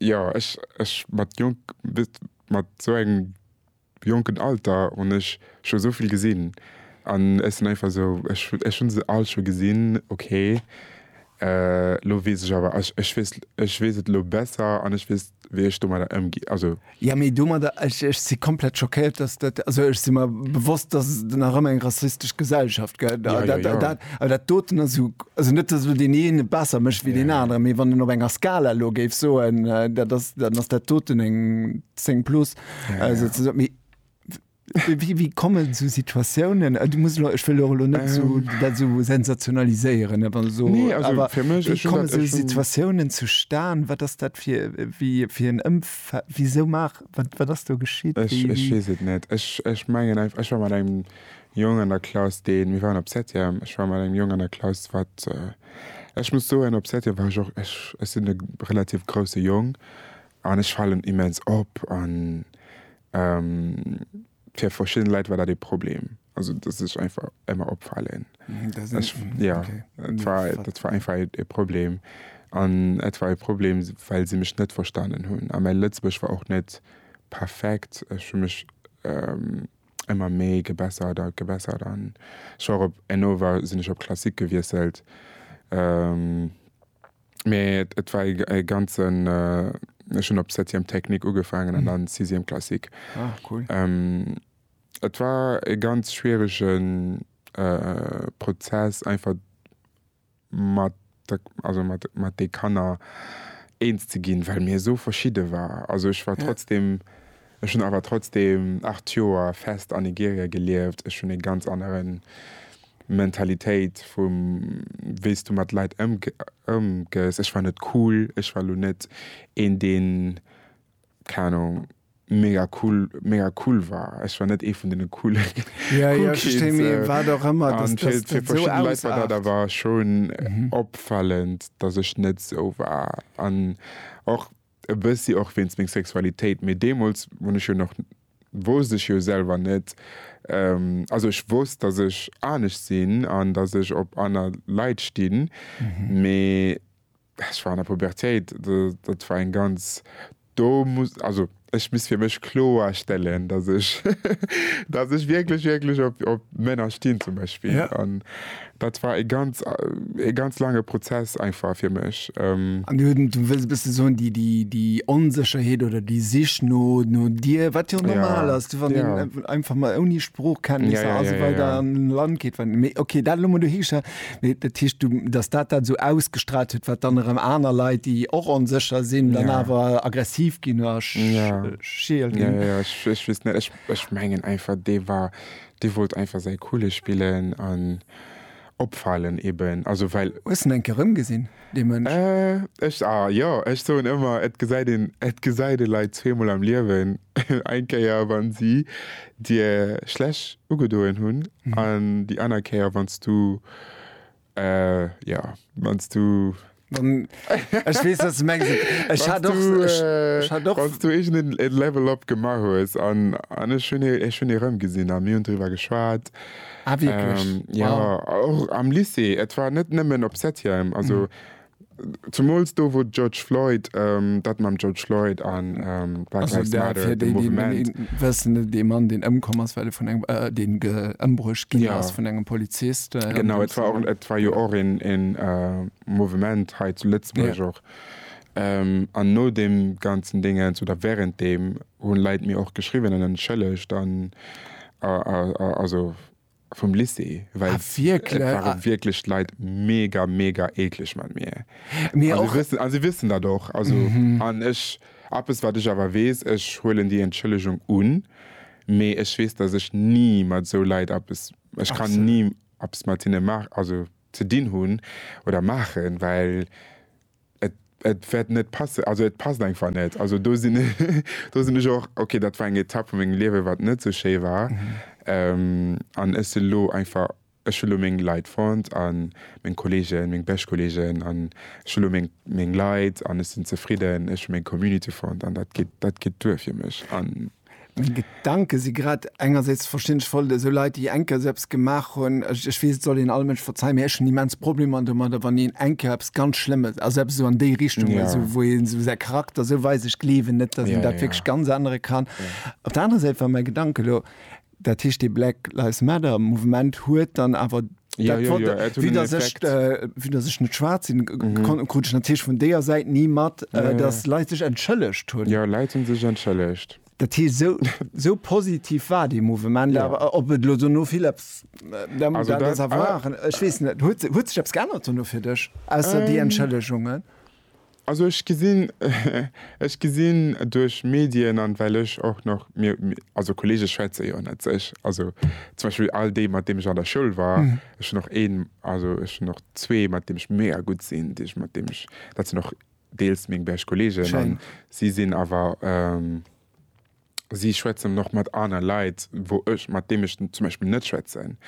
Jo, ech mat jonk, mat esou engem jonken Alter hunn ech scho esou vill gesinn an ech sinn einfach esou, ech hunn se all scho gesinn. Ok, elo weess ech awer, ech weess et elo besser an ech weess, wéi ech domadder ëmginn. Also, Ja, mee domadder, ech, ech si komplett schockéiert, dass dat, also ech si mer bewosst, dass et nach ëmmer eng rassistesch Gesellschaft gëtt. A Ja, ja, dat, ja. dat, awer dat doten ass esou, also net, dass elo deen eene besser mécht wéi deen aneren, mee wann een op enger Skala elo géif soen, äh, dat ass, dann ass dat doten eng 10 plus, äh, souzesoen. Mee Wéi komme sou Situatiounen? Du muss elo, ech wëll och elo net sou dat esou sensationaliséieren, awer esou, Nee, also awer fir mech, wéi ech hunn komme dat sou ech hunn Situatiounen zustan? Wat ass dat fir wéi fir en Ëmfe wisou maach wat wat ass do geschitt? Ech Wéi ech wéi weess et net. Ech ech mengen einfach, ech war mat engem Jong an der Klass, deen, mir waren op Septième, ech war mat engem Jong an der Klass, wat, ech muss soen, op Septième war ech och, ech ech sinn e relativ grousse Jong an ech falen immens op an Fir verschidden Leit war dat ee Problem, also dass ech einfach ëmmer opfalen. Ja dat war einfach ee Problem an et war ee Problem, well si mech net verstanen hunn. A mäi Lëtzebuergesch war och net perfekt, ech hu mech ëmmer méi gebessert a gebessert an ech war och op, Enova sinn ech op Classique gewiesselt. Mee et war e ganzen, ech hunn op Septième Technique ugefaangen an dann Sixième Classique. Ah, cool. Et war e ganz schwierege Prozess einfach mat, also mat de Kanner eens ze ginn, well mir esou verschidde waren. Also ech war trotzdeem Ech hunn awer trotzdeem 8 Joer fest an Nigeria gelieft. Ech hunn ee ganz anere Mentalitéit vum wéi s du mat Leit ëmgees. Ech war net cool, ech war elo net een deen, keng Ahnung, mega cool, mega cool war. Ech war net ee vun deene coole cool Kids. An fir verschidde Leit war dat awer schonn opfälend, datt ech net esou war. An och e bëssi och wéinst meng Sexualitéit, mee deemools hunn ech jo nach, wousst ech jo selwer net, also ech wousst, datt ech anescht sinn an datt ech op aner Leit stinn, mee ech war an der Pubertéit, dat war eng ganz, do muss, also ech muss fir mech kloerstellen, datt ech, datt ech wierklech, wierklech op Männer stinn zum Beispill. Dat war e ganz, e ganz laange Prozess einfach fir mech. An du wëlls e bësse soen, déi, déi, déi Onsécherheet oder déi Sich no, no dir, wat jo och normal ass, wann een einfach mol ouni Sproochkenntnisser a sou weider an e Land geet, wann, mee okay, dat elo mol dohigestallt. Mee dat heescht, du, datt dat dat esou ausgestrahlt huet, wat dann erëm aner Leit, déi och onsécher sinn, dann awer aggressiv ginn oder schiel ginn. Jo, jo, jo, ech, ech weess net, ech, ech mengen einfach, dee war, Dee wollt einfach säi coole spillen an opfalen eben, also well. Hues en enke rëmgesinn, dee Mënsch? Äh, ech, ah jo, ech soen ëmmer, et gesäit een, et gesäit ee Leit zweemol am Liewen, eng Kéier wa si dir schlech ugedoen hunn an déi aner Kéier wann s du. Äh jo, wanns du. Wann ech weess wat s de mengs. Ech hat och ech hat och. Wanns du iergend en Level up gemaach hues an an ech hunn ee ech hunn ee erëmgesinn a mir hunn driwwer geschwat. Ah wierklech? Jo, och am Lycée. Et war net nëmmen op Septième, also Zemools do wou de George Floyd, dat mam George Floyd a Black Lives Matter, de Mouvement. Wëssen, dee Mann deen ëmkomm ass, well e vun engem, deen ëmbruecht ginn ass. Jo. Vun engem Polizist. Genau, et war och, et war jo och een Mouvement hei zu Lëtzebuerg och. An no deem ganzen Dingens oder während deem hunn Leit mir och geschriwwen an entschëllegt an also. vum Lycée, well ah, et ware ah. wierklech d'Leit mega mega ekleg mat mir. Mir och wëssen an si wëssen dat och also mm -hmm. an ech Appes wat ech awer wees, ech huelen déi Entschëllegung un, mee ech wees, datt ech ni mat sou Leit Appes ech Ach, kann so. ni Appes mat hinne mar also ze dinn hunn oder maachen, well Et wäert net passen, also et passt einfach net. Also do sinn do sinn ech och, okay, dat war eng Etapp vu mengem Liewe wat net sou schéi war an ech si lo einfach, ech hu lo meng Leit fonnt a meng Kolleegen, meng bescht Kolleegen an ech hu lo meng meng Leit an ech sinn zefridden. Ech hu meng Community fonnt an dat geet dat geet duer fir mech. Meng Gedanken si grad engersäits verständlech voll esou Leit déi eng Kéier esou eppes gemaach hunn, ech weess et soll een all Mënsch verzei, mee ech hunn immens Problemer domadder wann een eng Kéier eppes ganz Schlëmmes, also eppes esou an déi Richtung esou wou een esou säi Charakter esou weist, ech gleewen net, datt een dat wierklech ganz ännere kann. Op der anerer Säit war mäi Gedanken elo, Dat heescht dee Black Lives Matter Mouvement huet dann awer dat fort, wéi datt ech, vue datt ech net schwaarz sinn, krut ech natierlech vun deeër Säit ni mat, datt Leit sech entschëllegt hunn. Jo, Leit hunn sech entschëllegt. Dat heescht, esou, esou positiv war dee Mouvement awer. Ob et elo dono vill eppes, dat ass a war, ech weess net. Huet, huet sech eppes geännert dono fir dech, ausser déi Entschëllegungen? Also ech gesinn, ech gesinn duerch Medien an well ech och nach, mir, also Kollege schwätze jo net sech, also zum Beispill all déi mat deem ech an der Schoul war, ech hunn och een, also ech hunn och zwee mat deem ech mega gutt sinn, déi ech, mat deem ech, dat sinn och deels meng bescht Kollegen an si sinn awer. si schwätzen nach mat aner Leit, wou ech, mat deem ech zum Beispill net schwätzen.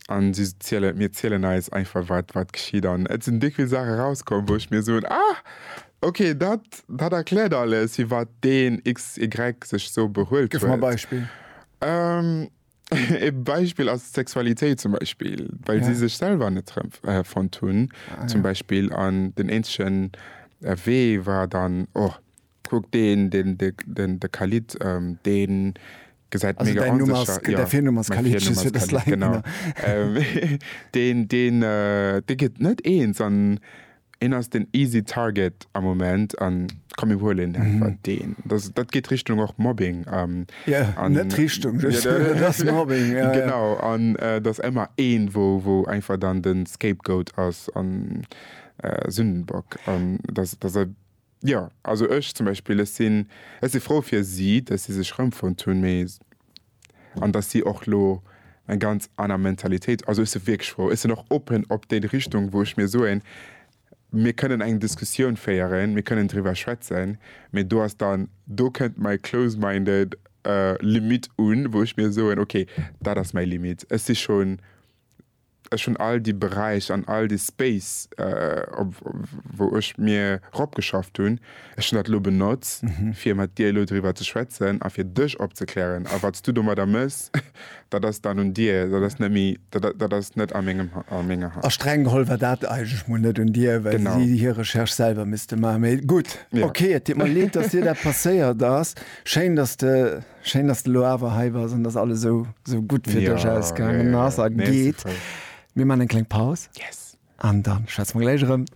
An si zielen, mir zielen eis einfach, wat, wat geschitt. An et sinn déck vill Saache rauskomm, wou ech mir soen, Ah! Okay, dat, dat erkläert alles, firwat deen XY sech esou behuelt huet. Gëff mer e Beispill. E Beispill ass d'Sexualitéit zum Beispill, well si sech selwer net erëmfonnt hunn zum Beispill. An den eenzegen Wee war dann, Oh, Kuck deen den de Khalid deen gesäit mega onsécher deen deen dee gëtt net eens an een ass den easy target am Moment an komm mir huelen einfach deen dat geet Richtung och Mobbing an net Richtung genau an et ass ëmmer een wou einfach dann den scapegoat ass an Sündenbock an dat ass. Jo, also ech zum Beispill, ech sinn, ech si frou fir si, datt si sech erëmfonnt hunn, mee, an datt si och elo eng ganz aner Mentalitéit, also ech si wierklech frou, ech sinn och open op déi Richtung, wou ech mir soen, mir kënnen eng Diskussioun féieren, mir kënnen driwwer schwätzen, mee do ass dann, do kënnt mäi close-minded Limitt un, wou ech mir soen, okay, dat ass mäi Limitt, ech si schonn Ech hunn all déi Beräich an all dee Space, op wou ech mir ropgeschafft hunn, ech hunn dat elo benotz, fir mat dir elo driwwer ze schwätzen a fir dech opzeklären. A wat s du domadder mëss, dat ass dann un dir. Dat ass net méi, dat ass net a mengem, a menger Hand. A streng geholl war dat eigentlech mol net un dir, well si hir Recherche selwer misste maachen. Mee gutt, okay, et deet mer leed, dass dir dat passéiert ass. Schéin, dass de Schéin dass de lo awer hei bass an dass alles sou sou gutt fir dech ausgaangen ass a geet. Mir man eng kleng Paus an dann schwätze mer gläich erëm.